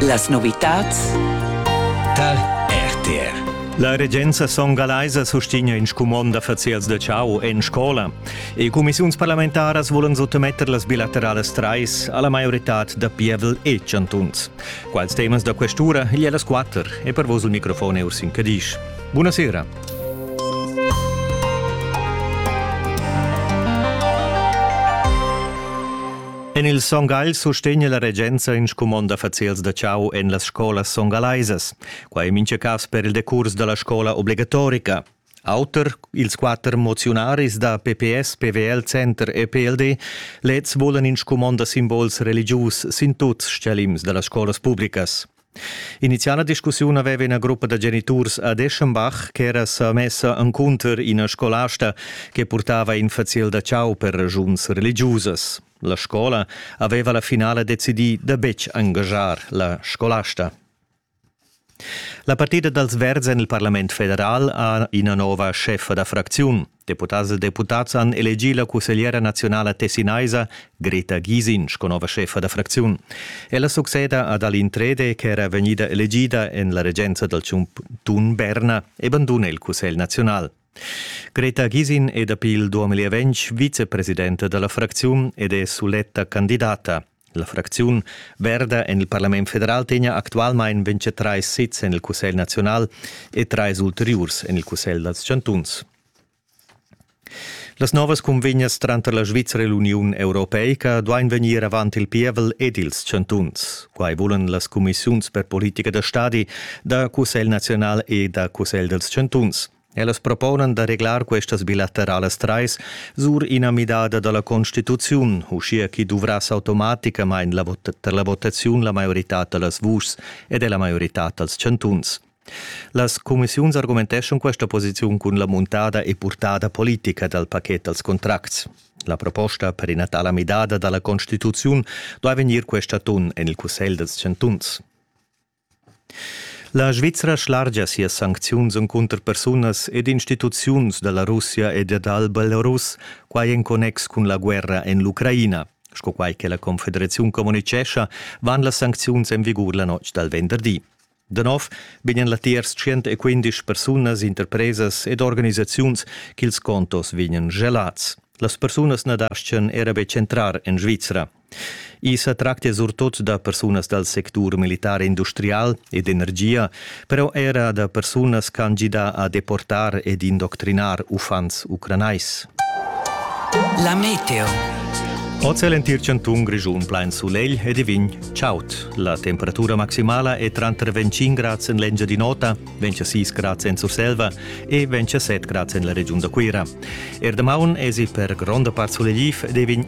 Las novitads tar RTR. La regenza son galaisa sustegna in scumond da faziels da ciao en scola. E cumissiuns parlamentaras volan sottometter las bilateralas trais alla maioritad da pievel e chantuns. Quals temas da questura gli las quatter e per vos il microfon è Ursin Cadisch. Buonasera. En il Son Gagl sustegna la regenza in scumond d'affaziels da chau en las scolas songalaisas. Quai en mintga cas per il decurs da la scola obligatorica. Auter ils quatter moziunaris da PPS, PVL, Center e PLD leds volan in scumond da simbols religius sin tuts stgalims da las scolas publicas. Iniziala discussiun aveva ina gruppa da geniturs ad Eschenbach ch'era sa messa encunter ina scolasta che purtava in faziel da chau per regiuns religiusas. La scola aveva la finala decidì da betg engaschar la scolasta. La partida dals Verds en il Parlament federal ha ina nova scheffa da fracziun. Deputads e deputads han elegì la cussegliera naziunala tessinaisa Greta Gysin sco nova scheffa da fracziun. Ella succeda ad Aline Trede ch'era vegnida elegida en la regenza dal chantun Berna e banduna il cussegl naziunal. Greta Gysin è dapi il 2020 vicepresidenta da la fracziun ed è suletta candidata. La fracziun verda en il parlament federal tegna actualmain ventg trais sezs en il Cussegl naziunal e trais ulteriurs en il Cussegl dals chantuns. Las novas cunvegnas tranter la Svizra e l'Uniun europeica duain vegnir avant il pievel ed ils chantuns. Quai vulan las cumissiuns per politica da stadi da Cussegl naziunal e da Cussegl dals chantuns. Ellas proponan da reglar questas bilateralas trais sur ina midada da la constituziun, uschia chi duvrass automaticamain la vot per la votaziun la maiorità da las vuschs ed è la maiorità dals chantuns. Las cumissiuns argumenteschon questa posiziun cun la muntada e purtada politica dal paket dals contracts. La proposta per ina tala midada da la constituziun duai vegnir questa atun en il Cussegl dals chantuns. La Svizra schlargia sias sancziuns encunter persunas ed instituziuns da la Russia e dal Belarus, quai en connex cun la guerra en l'Ucraina. Sco quai che la Confederaziun communitgescha, van las sancziuns en vigur la notg dal venderdi. Da nov vegnan latiers 115 persunas, interpresas ed organisaziuns ch'ils contos vegnan gelats. Las persunas na dastgan era betg entrar en Svizra, I sa tractia surtut da persunas dal sectur militar e industrial e d'energia, però era da persunas ch'han gidà a deportar ed indoctrinar uffants ucranais. La meteo. Oz è l'entir chantun Grischun plain sulegl ed i vegn chaud. La temperatura maximala è tranter 25 grads en l'Engiadin'Ota, 26 grads en Surselva e 27 grads en la regiun da Cuira. Er damaun èsi per gronda part sulegliv ed vegn